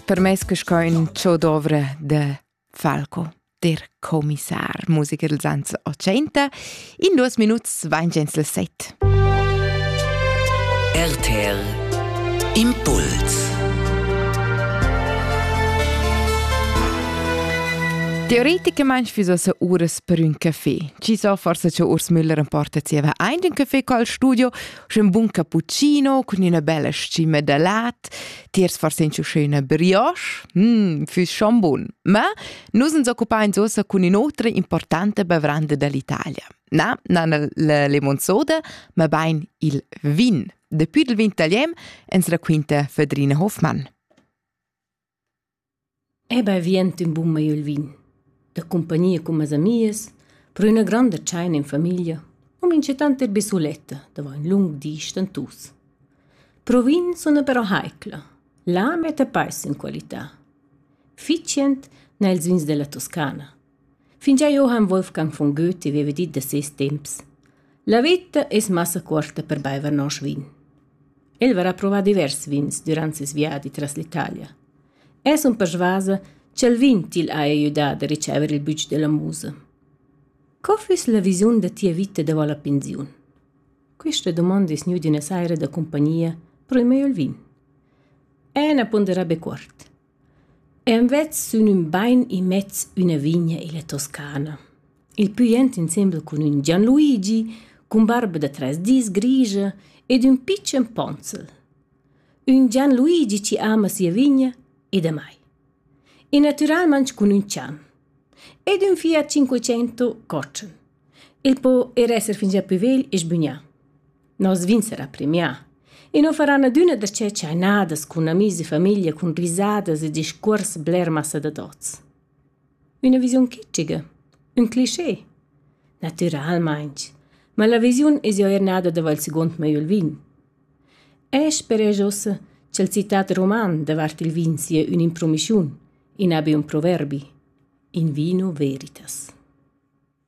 Per me che sco in ciò dovre de Falco der Kommissar Musiker dels ans 80 in duas minuts vain gens le set. RTL Impuls Teoretikermensch wieso se ures per un café. Ci so forse che Urs Müller emporta zieva ein den Café col studio Sch'ün bun cappuccino cun üna bella scima da lat, tiers forse usché üna brioche, mh, füss schon bun. Ma nus uns occupains uossa cun ün'otra importanta bavranda dall'Italia. Na, na la lemonzoda, ma bain il vin. Daplü dal vin talian ens raquinta Fedrina Hofmann. Eber vient ün bun mei il vin, da cumpagnia cun mes amias, pro üna gronda tschaina in famiglia, u minchatant eir be suletta davo ün lung di stentus. Pro vin suna però haicla, la metta peis in qualità. Fitschend n'ha ils vins della Toscana. Fingià eu han Wolfgang von Goethe vaiva dit da seis temps: «La vita es massa cuorta per baiver nosch vin». El varà provà divers vins dürant seis viadi tras l'Italia. Es ün persvasa cha'l vin til haja gnü dà da riceiver il bütsch della musa. Co füss la visiun da tia vita davo la pensiun? Quista dumonda es gnüda üna saira da cumpagnia pro il meglio il vin. E na ponderà be cuort. Envers sün ün bain immez üna vigna illa Toscana. Il pü jent insembel cun ün Gianluigi, cun barba da tres dis grigia ed ün pitschen ponzel. Ün Gianluigi chi ama sia vigna e damai. E natüralmang cun ün chan. Ed ün Fiat Cinquecento cotschen. Il po er esser fingià plü vegl e sbügnà. Nos vin sarà premià. I nu faran adüna darcheu tschainadas cun amis e famiglia cun risadas e discuors bler massa da tots. Üna visiun kitschiga, ün cliché, natüralmaing, ma la visiun es eir nada dava'l seguond mei il vin. E speresch uossa cha'l citat roman davart il vin sia ün'impromischiun, in abi ün proverbi, in vino veritas.